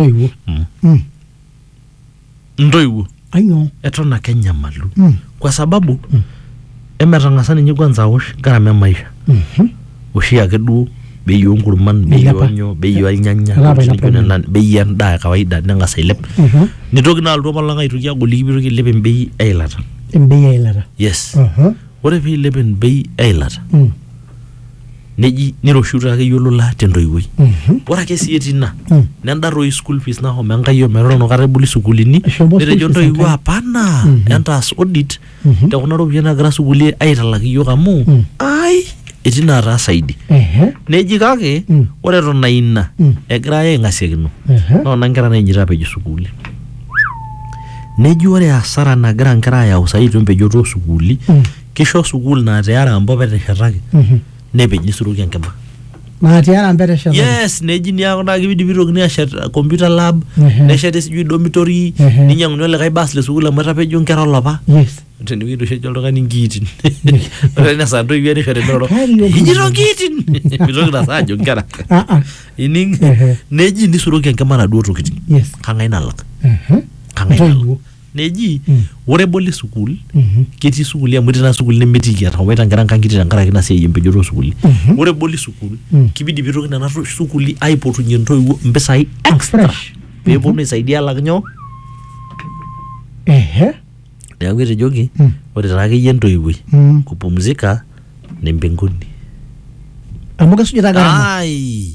ntoiwuo Mm. Mm, ntoiwuo ainyoo eton ake enyamalu Mm. kwa sababu emetang'asa ninye kwanza awosh gharama emaisha Mhm. oshi ake duo bei onkurman bei Eilepa. onyo bei olnyanya Elapa ntokitin naijo eilepa. nena, bei endaa e kawaida neng'as ailep Mhm. nitoki naa alotu apa lang aitoki agoliki pitoki ailep embei eilata embei eilata yes Aha. ore piilep embei eilata Mm. neji niroshiuta akeyie olola tentoiwuoi Mhm. ore ake sii etii ina Mm. nenda toi school fees nahomo enkai ometorono kata eboli sukuulini Eshomo school netejo fees ntoiwuo enkai. apana Mhm. entaas audit Mhm. te kuna ropiyiani nagira sukuuli aitalak iyiok amu Mm. ai etii naataa saidi Ehe. neji kake Mm. ore eton aa ina Mm. egira aya aing'asiakino Ehe. noona nkera nainjito apejo sukuuli neji ore asara nagira nkera ayau saai itu empejoto osukuuli Mm. Kisho sukuul naa te Arambe opa eteshetaki nepej nisuroki enkima. naa tiara mpete eshetaki Yes, neji niaku naa kibidi pitokini ashet uh, computer lab, Ehe. nesheti sijui dormitory, Ehe. ninyang'uni olikae bus le sukuul amu etapejo nkera olopa. yes Tenewueji oshi ejo oltung'ani nkiitin. Ore ina saa ntoiwuo erisho teniroro. Kari o nkiitin. Ijito nkiitin. Mitoki ina saa ajo nkera. ah ah Ining? Ehe. Neji nisuroki enkima naduo tokitin. yes Kang'ae nalak? Mhm. Kang'ae nalak? Ntoiwuo. neji ore eboli sukuul ketii sukuuli amu etii naa sukuuli nemetiiki etawaita nkera nkang'itie tenkaraki ina siai empejoto osukuuli ore eboli sukuul kibidi pitoki nena to- sukuuli aipotunyie intoiwuo impisai extra Fresh. peponu aisaidia alak nyoo Ehe. neeku etejoki ore taa akeyie entoiwuoi Mm. kupumzika ni mbinguni Amu kesujita gharama. ai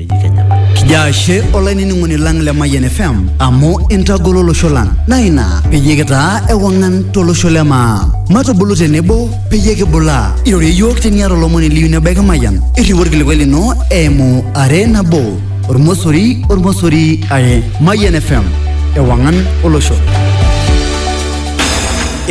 eji Kenya. Kijo ashe olainining'oni lang le Mayian FM amu intagolo olosho lang naa ina peyie kitaa ewang'an tolosho le maa. Matubulu tenebo peyie kibulaa. Irorie iyiook teniata olomoni liyieu nebaiki Mayian. Irriu orkilikuai lino eimu are nabo ormosori ormosori are. Mayian FM ewang'an olosho.